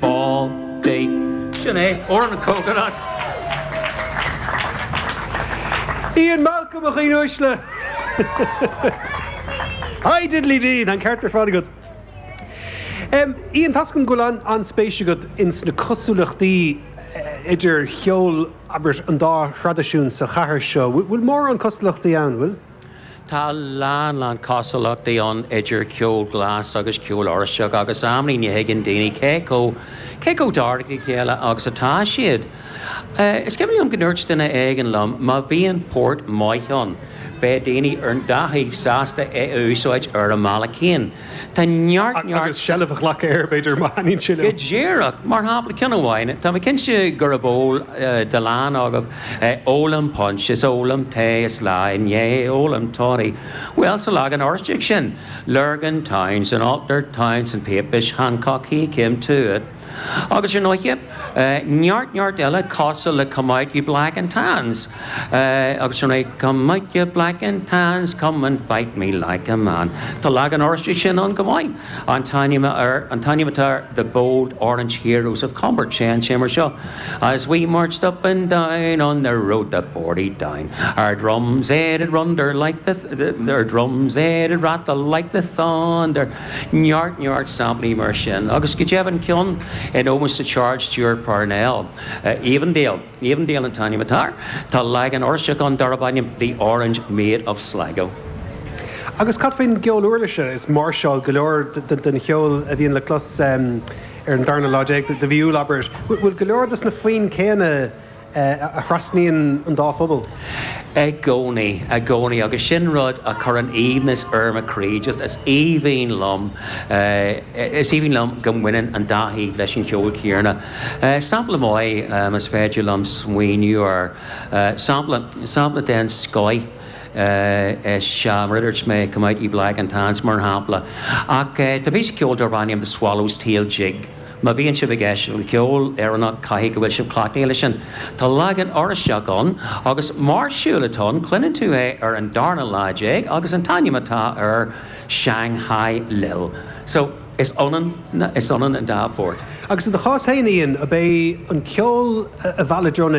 ball beag. Sin é, Amhrán an coconut! Ian Malcolm, a dhaoine uaisle! Hi diddly dee! Tá an ceart ar fad agat. Em, Ian, tá 's agam go bhfuil an, an-spéis agat ins na cosúlachtaí idir cheol, abair, an dá thraidisiún sa chathair seo. Bhfuil, bhfuil mórán cosúlachtaí ann, bhfuil? Tá a lán lán cosúlachtaí ann idir ceol glas agus ceol Oráisteach agus amanna, ní thuigeann daoine cé chomh cé chomh cóngarach dá chéile agus atá siad. Is cuimhin liom go ndúirt duine éigin liom má bhíonn port maith ann beidh daoine ar an dá thaobh sásta é a úsáid ar a mbealach féin. Tá neart, neart. Agus seilbh a ghlacadh air, b'fhéidir, má thaitníonn sé leo. Go díreach. Mar shampla, ceann amháin, tá mé cinnte gurb eol do a lán agaibh, Ólaim punch is ólaim tae is lá ina dhiaidh ólaim toddy. Bhuel, sa leagan Oráisteach sin, Lurgan town 's an altered town 's an papish Hancock he came to it. Agus ar ndóigh, neart neart eile cosúil le Come Out Ye Black and Tans. Agus ar ndóigh, Come Out Ye Black and Tans, come out and fight me like a man. Tá leagan Oráisteach de sin ann chomh maith. An t-ainm air, an t-ainm atá air The Bold Orange Heroes of Comber. Téann sé mar seo, As we marched up and down on the road to Portadown, Our drums they did runder like the, our drums they did rattle like the thunder, Neart neart samplaí mar sin, agus go deimhin ceann in ómós do Charles Stewart Parnell, Avondale, Avondale an t-ainm atá air, tá leagan Oráisteach ann darb ainm The Orange Maid of Sligo. Agus cad faoin gceol uirlise is máirseálacha go leor den cheol a bhíonn le clos ar an darna lá déag de mhí Iúil, abair? Bhfuil go leor de na foinn céanna a thrasnaíonn an dá phobal. I gcónaí, i gcónaí. Agus sin rud a chuireann aoibhneas ar mo chroí. Just, is aoibhinn liom, is aoibhinn liom go mbaineann an dá thaobh leis an cheol céanna. Sampla maith, más féidir liom smaoineamh air, sampla, sampla den scoith is ea mar a dúirt mé, Come Out Ye Black and Tans, mar shampla. Ach tá píosa ceoil darb ainm The Swallow's Tail Jig, Má bhíonn sibh ag éisteacht le ceol Éireannach caithfidh go bhfuil sibh cleachtaithe leis sin. Tá leagan Oráisteach ann agus máirseáil atá ann cluineann tú é ar an darna lá déag agus an t-ainm atá air Shanghai Lil. So, is ionann na, is ionann an dá phort. Agus i do chás féin, a Ian, ab é an ceol a mheall i dtreo na.